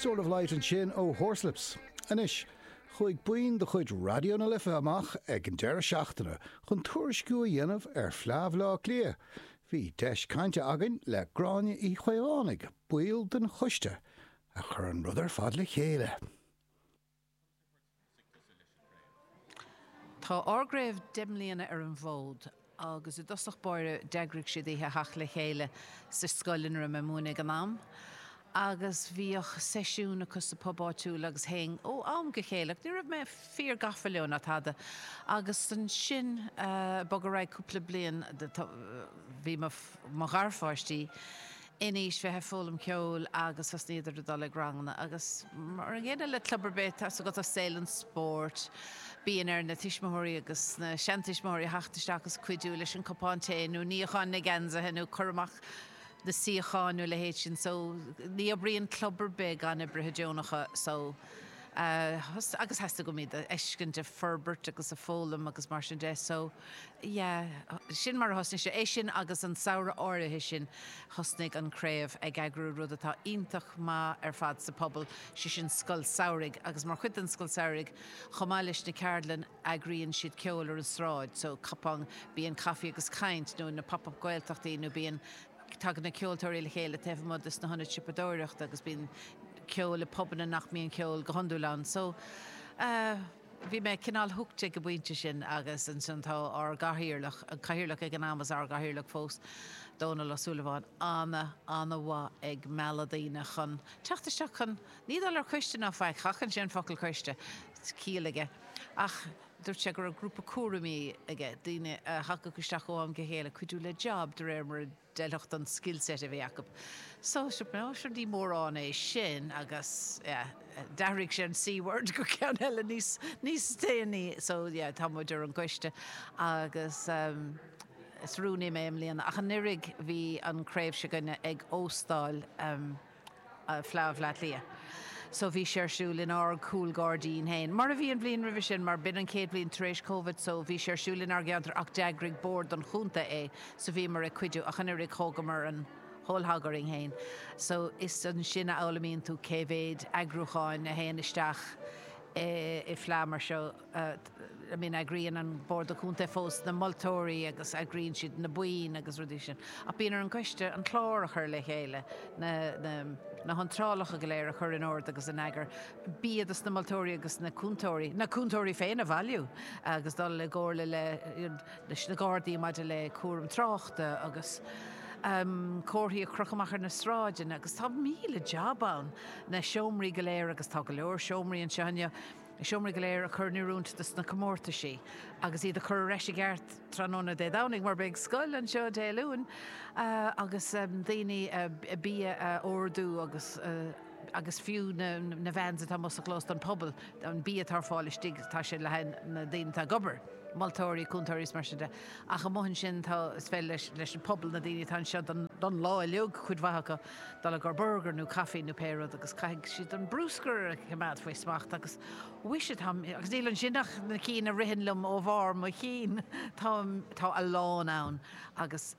Sword of Light ansin ó Horslips. Anois, chuaigh buíon de chuid Raidió na Life amach ag an deireadh seachtaine chun tuairisciú a dhéanamh ar Fhleadh Bhleá Cliath. Bhí deis cainte againn le Gráinne Uí Chaomhánaigh, ball den choiste a chur an rud ar fad le chéile. Tá ár gcraobh deich mbliana ar an bhfód agus i dtosach báire d'eagraigh siad oíche theacht le chéile sa scoil ina raibh mé ag múineadh ag an am agus bhíodh seisiún acu sa bpub áitiúil agus théinn ó am go chéile ach ní raibh mé fíor gafa leo ná tada agus ansin bog ar aghaidh cúpla bliain bhí mo gharpháistí in aois bheith ag foghlaim ceoil agus thosnaíodar ag dul ag ranganna agus mar an gcéanna le club ar bith atá agat i saol an spóirt bíonn ar na tuismitheoirí agus na seantuismitheoirí a theacht isteach agus cuidiú leis an cupán tae nó níochán na ngeansaithe nó cur amach na suíochán nó a leithéid sin so ní oibríonn club ar bith gan oibrithe deonacha so agus theastaigh uaim iad a fheiscint ag forbairt agus ag foghlaim agus mar sin de so. Yeah, sin mar a thosnaigh sé. É sin agus an samhradh áirithe sin thosnaigh an Craobh ag eagrú rud atá iontach maith ar fad sa phobal, sé sin Scoil Samhraidh agus mar chuid den Scoil Samhraidh chomh maith leis na ceardlanna eagraíonn siad ceol ar an tsráid, so cupán tae, bíonn caife agus caint nó na Pop-Up Gaeltachtaí nó bíonn, tagann na ceoltóirí le chéile taobh amuigh de sna hionaid siopadóireachta agus bíonn ceol i bpubanna nach mbíonn ceol go hiondúil ann so eh. Bhí mé cineál hooked ag an bpointe sin agus ansin tá ár gcathaoirleach, an cathaoirleach ag an am is ár gcathaoirleach fós, Dónal Ó Súilleabháin, ana, ana mhaith ag mealladh daoine chun teacht isteach chun, ní dul ar choiste ná faic, seachnaíonn sé an focal coiste, ciall aige, ach dúirt sé go raibh grúpa cúraimí aige, daoine a thagadh isteach ó am go chéile, cuidiú le job de réir mar a. D'fheilfeadh don skillset a bhí acu. So, sure, but no, sure ní mórán é sin agus, yeah, d'athraigh sé an C-word go ceann eile níos, níos déanaí. So, yeah, tá muid ar an gcoiste agus, um, is rúnaí mé i mbliana. Ach anuraidh bhí an craobh s'againne ag óstáil, um, Fleá Bhleá Cliath. So bhí sé ar siúl in ár gcúl gairdín féin, mar a bhí an bhliain roimhe sin, mar b'in an chéad bhliain tar éis Covid, so bhí sé ar siúl in ár gceantar ach d'eagraigh bord an chontae é, so bhíomar ag cuidiú ach anuraidh, thógamar an whole hog orainn féin. So is ansin a fhoghlaimíonn tú cé mhéad eagrúcháin a théann isteach i bhfleá mar seo. I mean, eagraíonn an Bord Contae fós na moltóirí agus eagraíonn siad na boinn agus rudaí sin. Ach bíonn ar an gcoiste an clár a chur le chéile, na, na, na hiontrálacha go léir a chur in ord agus in eagar, bia do na moltóirí agus na cúntóirí, na cúntóirí féin a bhailiú agus dul i gcomhairle le, leis na Gardaí maidir le cúram tráchta agus ehm comharthaí a chrochadh amach ar na sráideanna agus tá míle jab ann, na seomraí go léir agus tá go leor seomraí anseo inniu, Na seomraí go léir a chur in oiriúint do na comórtaisí agus iad a chur ar ais i gceart tráthnóna Dé Domhnaigh mar beidh scoil anseo Dé Luain agus daoine bia a órdú agus agus fiú na vans atá amuigh sa chlós don pobal, an bia atá ar fáil istigh tá sé le haghaidh na daoine atá ag obair, moltóirí, cúntóirí is mar sin de. Ach amuigh ansin tá is féidir leis leis an pobal na daoine atá anseo don lá uilig cuid mhaith acu, Dul ag iarraidh burgar nó caifí nó pé rud agus caithfidh siad an brúscar a choimeád faoi smacht agus mhuise, tá, agus níl ansin ach na cinn a ritheann liom ó bharr mo chinn, tá, tá a lán ann agus,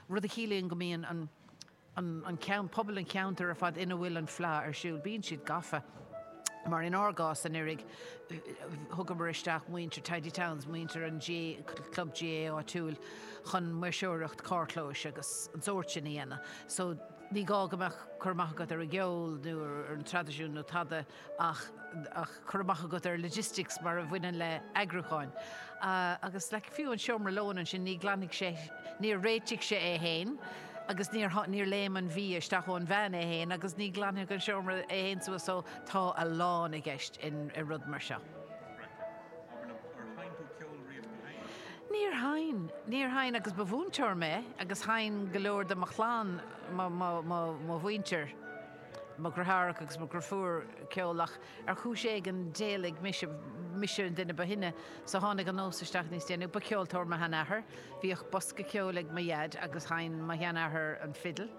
rud a chiallaíonn go mbíonn an, an, an cean-, pobal an cheantair ar fad ina bhfuil an fleá ar siúl, bíonn siad gafa. mar in ár gcás anuiridh thugamar isteach muintir Tidy Towns, muintir an club GAA áitiúil chun maoirseoireacht carrchlóis agus an sórt sin a dhéanamh so ní gá go mbeadh cur amach agat ar an gceol nó ar an traidisiún nó tada ach cur amach agat ar logistics mar a bhaineann le eagrúcháin agus like fiú an seomra lóin ansin ní ghlan sé, níor réitigh sé é fhéin. agus níor, níor léim an bhia isteach ón van é fhéin agus ní ghlanfaidh an seomra é fhéin suas so tá a lán i gceist in, i rud mar seo. Níor sheinn, níor sheinn agus ba mhúinteoir mé agus sheinn go leor de mo chlann, mo, mo, mo, mo mhuintir, mo dhriotháracha agus mo dhriofúr ceol ach, Ar chúis éigin, d'éalaigh mise, mise an duine ba shine so tháinig an nós isteach níos déanaí. Ba cheoltóir mo sheanathair, bhíodh bosca ceoil ag mo dhaid agus sheinn mo sheanathair an fidil.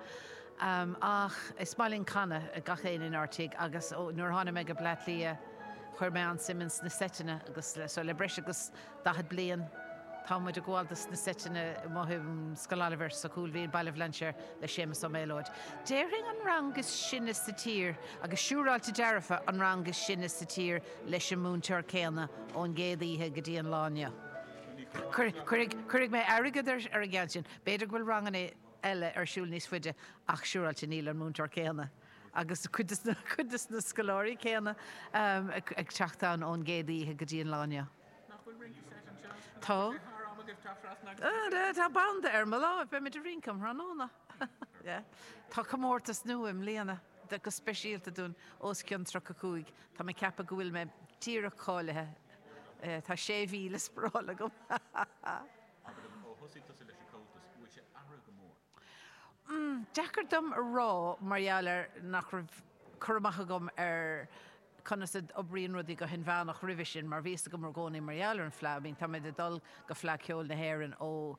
Ach bhí smaidhmín canadh ag gach aon inár tigh agus nuair a tháinig mé go Bleá Cliath chuir mé an-suim ins na seiteanna agus so le breis agus 40 bliain tá muid ag gabháil do na seiteanna amuigh i Scoil Oilibhéir sa Chúil Mhín, Baile Bhlainséir le Séamus Ó Méalóid, déarfainn, an rang is sine sa tír agus siúráilte dearfa an rang is sine sa tír leis an múinteoir céanna ón gcéad oíche go dtí an lá inniu. Cuirfidh mé airgead ar an gceann sin. B'fhéidir go bhfuil ranganna eile ar siúl níos faide ach siúráilte níl an múinteoir céanna. agus cuid de na scoláirí céanna ag teacht ann ón gcéad oíche go dtí an lá inniu. Nach bhfuil rince seit anseo? Tá. Tá sé thar am agaibh teacht trasna agus rince a dhéanamh. Tá banda ar mo láimh, beidh muid ag rince um thráthnóna. Tá comórtas nua i mbliana, go speisialta dúinn os cionn 35. Tá mé ag ceapadh go bhfuil mé díreach cáilithe, tá 6,000 spáráil agam! Abair liom, ó thosaigh tusa leis an gComhaltas, go bhfuil sé athraithe go mór. Umm, deacair dom a rá mar gheall air nach raibh cur amach agam ar conas a d'oibríonn rudaí go hinmheánach roimhe sin mar bhí fhios agam i gcónaí mar gheall ar an Fleadh, I mean, táimid ag dul go Fleadh Ceoil na hÉireann ó,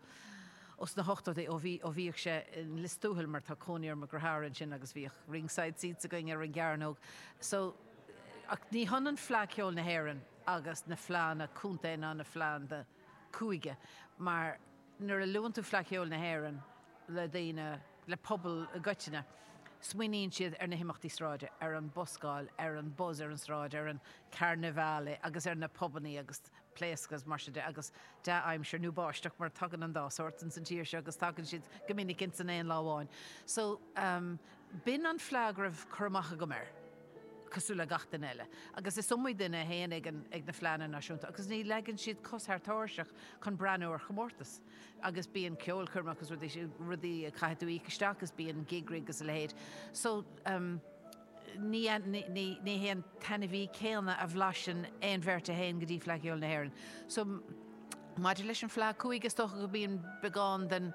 ó sna hochtóidí, ó bhí, ó bhíodh sé in Lios Tuathail mar tá cónaí orm i gCromharra ansin agus bhíodh ringside seats againn ar an gcearnóg so, ach ní hionann Fleadh Ceoil na hÉireann agus na Fleadhanna Contae ná na Fleadhanna Cúige mar nuair a luann tú Fleadh Cheoil na hÉireann le daoine, le pobal i gcoitinne, smaoiníonn siad ar na himeachtaí sráide, ar an buscáil, ar an buzz ar an sráid, ar an carnivale agus ar na pubannaí ag pléascadh agus mar sin de agus dea-aimsir nó báisteach mar tagann an dá shórt ins an tír seo agus tagann siad go minic ins an aon lá amháin. So, b'in an fleadh go raibh cur amach agam air. cosúil le gach duine eile, agus is iomaí duine a théann ag na Fleadhanna Náisiúnta agus ní leagann siad cos thar tairseach chun breathnú ar chomórtas. Agus bíonn ceolchoirmeacha agus rudaí, rudaí a chaithfidh tú íoc isteach agus bíonn gig rig agus a leithéid. So, ní, ní, ní hé an t-ainmhí céanna a bhlaiseann aon bheirt a théann go dtí Fleadh Cheoil na hÉireann. So, maidir leis an Fleadh Cúige, is dócha go mbíonn beagán den,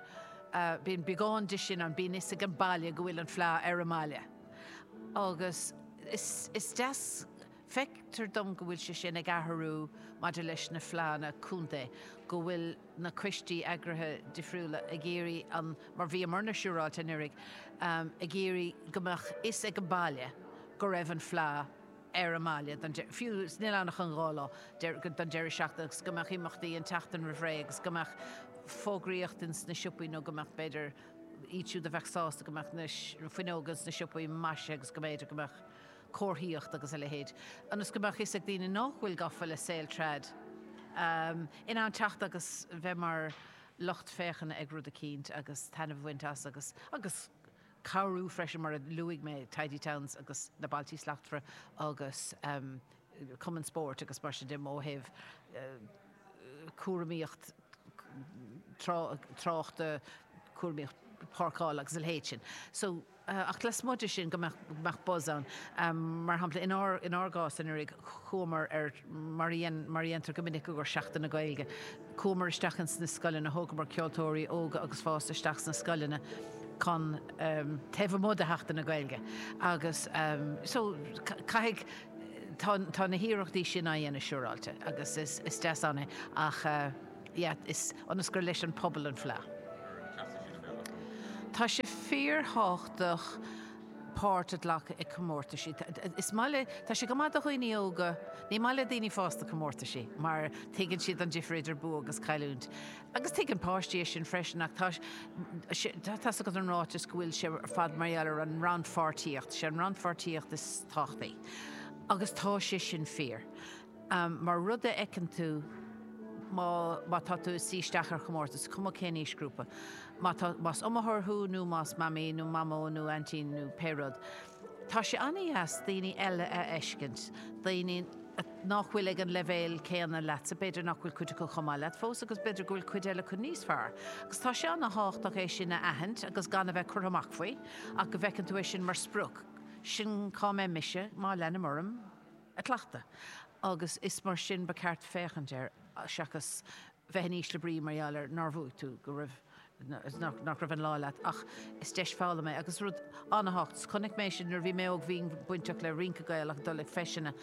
bíonn beagán de sin ann, bíonn fhios ag an baile go bhfuil an Fleadh ar an mbaile. Agus is deas, feictear dom go bhfuil sé sin ag athrú maidir leis na fleánna contae, go bhfuil na coistí eagraithe difriúla ag iarraidh an, mar bhíomar-na siúráilte anuraidh, ag iarraidh go mbeadh fhios ag an baile go raibh an fleá ar an mbaile don, fiú mura bhfuil ann ach an dhá lá, don deireadh seachtaine agus go mbeadh imeachtaí an tseachtain roimh ré agus go mbeadh fógraíocht ins na siopaí nó go mbeadh b'fhéidir. iad siúd a bheadh sásta go mbeadh na fuinneoga ins na siopaí maisithe agus go mb'fhéidir go mbeadh comharthaíocht agus a leithéid, ionas go mbeadh fhios ag daoine nach bhfuil gafa le saol trad, in ann teacht agus bheith mar lucht féachana ag rud eicínt agus taitneamh a bhaint as agus agus cabhrú freisin mar a luaigh mé Tidy Towns agus na Bailtí Slachtmhara agus. cumainn spóirt agus mar sin de, ó thaobh cúraimíocht tráchta, cúraimíocht páirceála agus a leithéid sin. So, ach lasmuigh de sin go mbeadh buzz ann. Mar shampla, in ár gcás anuraidh, chuamar ar, mar a dhéantar go minic i gcomhair Sheachtain na Gaeilge, chuamar isteach ins na scoileanna, thógamar ceoltóirí óga agus fásta isteach sna scoileanna chun, taobh amuigh de Sheachtain na Gaeilge, agus, so, caithfidh, tá na hiarrachtaí sin á dhéanamh siúráilte agus is deas an ní ach yeah is ionas gur leis an pobal an fleá. Tá sé fíorthábhachtach páirt a ghlacadh i comórtaisí. Is maith le, tá sé go maith do dhaoine óga, ní maith le daoine fásta comórtaisí mar tuigeann siad an difir idir bua agus cailliúint. Agus tuigeann páistí é sin freisin, ach tá a fhios agat an ráiteas go bhfuil sé ar fad mar gheall ar an rannpháirtíocht. Is é an rannpháirtíocht is tábhachtaí. Agus tá sé sin fíor. Mar rud a fheiceann tú, má tá tú ag suí isteach ar chomórtas, is cuma cén aoisghrúpa, más iomaitheoir thú nó más mamaí nó mamó nó aintín nó pé rud, Tá sé an-dheas daoine eile a fheiscint, daoine nach bhfuil ag an leibhéal céanna leatsa, b'fhéidir nach bhfuil cuid acu chomh maith leat fós agus b'fhéidir go bhfuil cuid eile acu níos fearr. Agus tá sé an-tábhachtach é sin a aithint agus gan a bheith curtha amach faoi ach go bhfeiceann tú é sin mar sprioc, sin cá mbeidh mise má leanaim orm ag cleachtadh agus is mar sin ba cheart féachaint air seachas bheith in ísle brí mar gheall ar nár bhuaigh tú, go raibh, nach raibh an lá leat. Ach is deis foghlama é agus is rud ana-thábhachtach. Is chonaic mé sin nuair a bhí mé óg, bhínn bainteach le rince Gaelach, ag dul ag feiseanna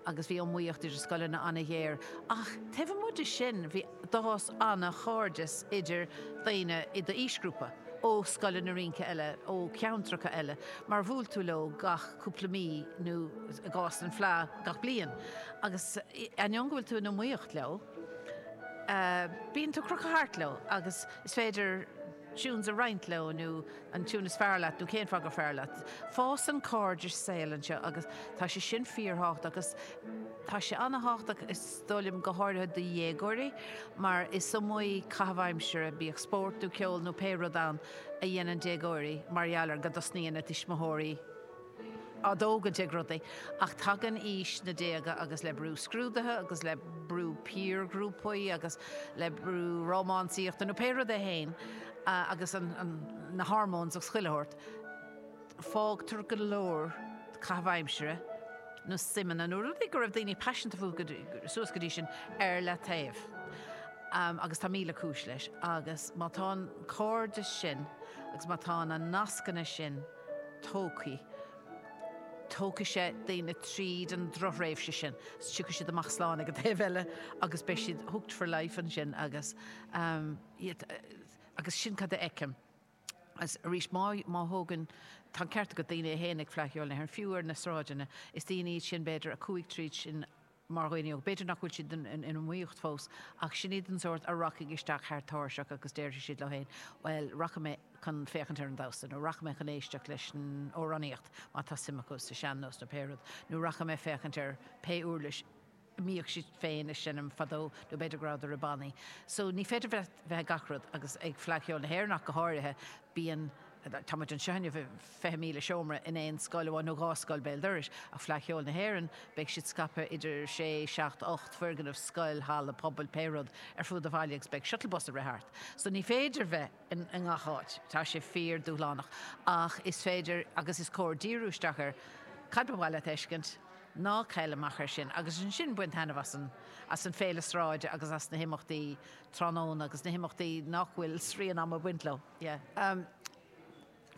agus bhí iomaíocht idir scoileanna ana-ghéar. Ach taobh amuigh de sin, bhí, d'fhás ana-chairdeas idir daoine i d'aoisghrúpa, ó scoileanna rince eile, ó cheantracha eile, mar bhuail tú leo gach cúpla mí nó i gcás an Fleadh, gach bliain. Agus ainneoin go bhfuil tú in iomaíocht leo. Bíonn tú ag crochadh thart leo agus is féidir tunes a roinnt leo nó an tune is fearr leat nó cén fáth gur fearr leat. Fásann cairdis saoil ansin agus tá sé sin fíorthábhachtach agus tá sé ana-thábhachtach is dóigh liom go háirithe do dhéagóirí mar is iomaí caitheamh aimsire, bíodh spórt nó ceol nó pé rud ann, a dhéanann déagóirí mar gheall ar go dtosnaíonn a dtuismitheoirí. á dtógaint ag rudaí. Ach tagann aois na déaga agus le brú scrúduithe agus le brú piarghrúpaí agus le brú rómánsaíochta nó pé rud é féin agus na hormones agus chuile shórt, fágtar go leor caitheamh aimsire nó suimeanna nó rudaí go raibh daoine paiseanta fúthu suas go dtí sin ar leataobh. Agus tá míle cúis leis. Agus má tá an cairdeas sin agus má tá na nascanna sin, Tógfaidh. Tógfaidh sé daoine tríd an drochthréimhse sin. Tiocfaidh siad amach slán ag an taobh eile agus beidh siad hooked for life ansin agus iad, agus sin cad a fheicim. Agus arís, má, má thógann, tá an ceart agat daoine a théann ag Fleadh Cheoil na hÉireann, fiú ar na sráideanna, is daoine iad sin b'fhéidir a chuaigh tríd sin, mar dhaoine óga. B'fhéidir nach bhfuil siad in iomaíocht fós, ach sin iad an sórt a rachaidh isteach thar tairseach agus déarfaidh siad leo féin, bhuel, rachaidh mé chun féachaint ar an damhsa, nó rachaidh mé chun éisteacht leis an amhránaíocht, má tá suim acu sa sean-nós, nó pé rud, nó rachaidh mé féachaint ar pé uirlis a mbíodh siad féin ag seinm fadó, nó b'fhéidir go rabhadar i mbannaí. So, ní féidir bheith i ngach rud, agus ag Fleadh Cheoil na hÉireann ach go háirithe, bíonn. Táimid anseo inniu, fiche míle seomra in aon scoil amháin, nó dhá scoil béal dorais, ach Fleadh Cheoil na hÉireann, beidh siad scaipthe idir sé, seacht, ocht bhfoirgneamh, scoil, halla, puball, pé rud, ar fud an bhaile agus beidh shuttle bus ag rith thart. So ní féidir bheith i ngach áit, tá sé fíor dúshlánach, ach is féidir agus is cóir díriú isteach ar cad ba mhaith leat a fheiscint, ná caill amach ar sin, agus ansin bain taitneamh as an, as an fhéile sráide agus as na himeachtaí tráthnóna agus na himeachtaí nach bhfuil srian ama ag baint leo. Yeah.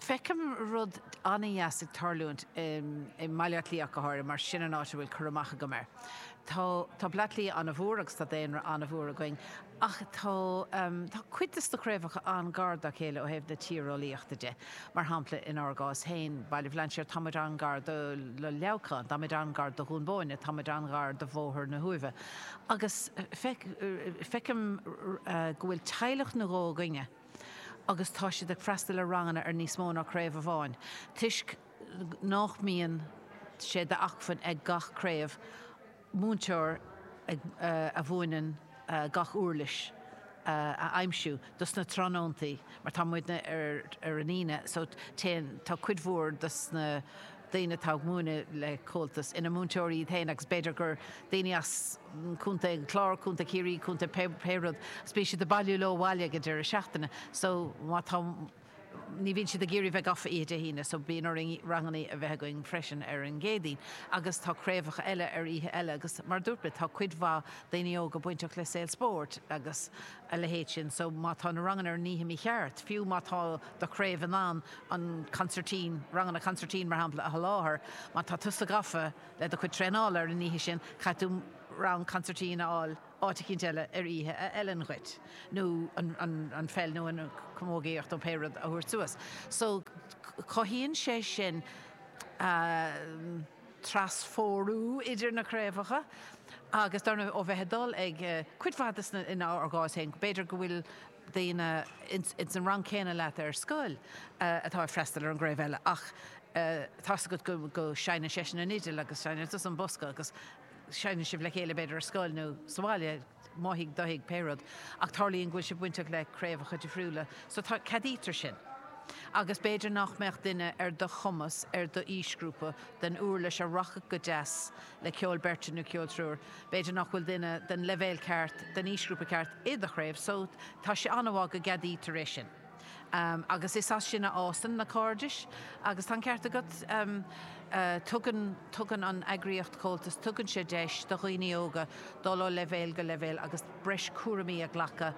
Feicim rud an-deas ag tarlúint i mBaile Átha Cliath ach go háirithe mar sin an áit a bhfuil cur amach agam air. Tá tá Bleá Cliath an-mhór agus tá daonra an-mhór againn ach tá tá cuid de na craobhacha an-gar dá chéile ó thaobh na tíreolaíochta de. Mar shampla inár gcás féin, Baile Bhlainséir, tá muid an-gar do do Leamhcán, tá muid an-gar do Dhún Bóinne, tá muid an-gar do Bhóthar na hUaimhe agus feicim go bhfuil teaghlach nó dhó againne, agus tá siad ag freastal ar ranganna ar níos mó ná craobh amháin toisc nách mbíonn sé d'acmhainn ag gach craobh múinteoir a mhúineann gach uirlis a aimsiú dos na tráthnóntaí mar tá muidne ar an Aoine so téann tá cuid mhór dos na daoine atá ag múineadh le Comhaltas, ina múinteoirí iad féin agus b'fhéidir gur daoine as Contae an Chláir, Contae Chiarraí, Contae pé, pé rud, agus bíonn siad ag bailiú leo abhaile ag an deireadh seachtaine. So, má tá, ní bhíonn siad ag iarraidh bheith gafa oíche Dé hAoine, so bíonn orainn rangannaí a bheith againn freisin ar an gCéadaoin. Agus tá craobhacha eile ar oíche eile agus mar a dúirt mé, tá cuid mhaith daoine óga bainteach le saol spóirt agus, a leithéid sin, so má tá na ranganna ar an oíche mícheart, fiú má tá do chraobh in ann an consairtín, ranganna consairtín mar shampla, a sholáthar, má tá tusa gafa le do chuid traenála ar an oíche sin, caithfidh tú rang consairtín a fháil áit eicínt eile ar oíche a fheileann dhuit, nó an pheil nó an camógaíocht nó pé rud a thabhairt suas. So cothaíonn sé sin. trasphórú idir na craobhacha agus dar ndóigh ó bheith ag dul ag cuid mhaith de sna, inár gcás féin b'fhéidir go bhfuil daoine ins an rang céanna leat ar scoil atá ag freastal ar an gcraobh eile ach tá 'fhios agat go go seinneann seisean an fhidil agus seinneann tusa an bosca agus seinneann sibh le chéile b'fhéidir ar scoil nó sa bhaile nó i dtigh duine pé rud, ach tarlaíonn go bhfuil sé bainteach le craobhacha difriúla, so tá, ceadaítear sin. Agus b'fhéidir nach mbeadh duine ar do chumas, ar d'aoisghrúpa, den uirlis a rachadh go deas le ceol beirte nó ceol triúir. B'fhéidir nach bhfuil duine den leibhéal ceart, den aoisghrúpa ceart, i do chraobh, so tá sé an-mhaith go gceadaítear é sin. Agus is as sin a fhásann na cairdis. Agus tá an ceart agat, tugann, tugann an eagraíocht Comhaltas, tugann sé deis do dhaoine óga dul ó leibhéal go leibhéal agus breis cúraimí a ghlacadh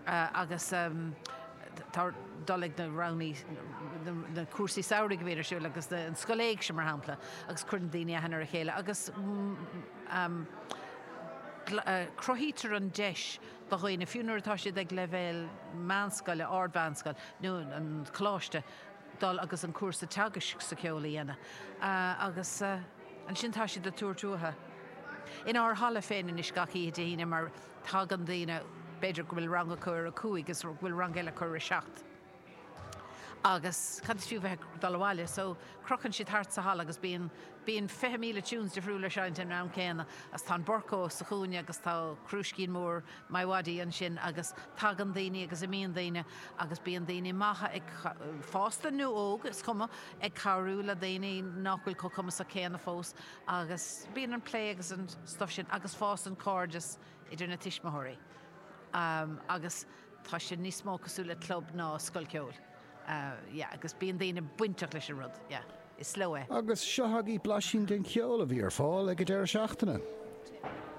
agus tá, dul ag na ranganna, na cúrsaí samhraidh a bhíonn ar siúl agus an Scoil Éigse mar shampla agus cuireann daoine aithne ar a chéile agus cruthaítear an deis do dhaoine, fiú nuair atá siad ag leibhéal meánscoile, ardmheánscoil nó an choláiste, dul agus an cúrsa teagaisc sa cheol a dhéanamh agus ansin tá siad ag tabhairt uathu. Inár halla féin anois gach oíche Dé hAoine mar tagann daoine, b'fhéidir go bhfuil rang acu ar a cúig is go bhfuil rang eile acu ar a seacht, Agus cad is fiú bheith ag dul abhaile? So, crochann siad thart sa halla agus bíonn, bíonn fiche míle tunes difriúla ag seinnt san am céanna. Agus tá an Burco sa chúinne agus tá crúiscín mór MiWadi ansin agus tagann daoine agus imíonn daoine agus bíonn daoine maithe ag, fásta nó óg, is cuma, ag cabhrú le daoine nach bhfuil chomh cumasach céanna fós agus bíonn an plé agus an stuff sin agus fásann cairdeas idir na tuismitheoirí agus. Tá sé níos mó cosúil le club ná scoil ceoil. Yeah, agus bíonn daoine bainteach leis an rud. Yeah. Is leo é. Agus seo agaibh blaisín den cheol a bhí ar fáil ag an deireadh seachtaine.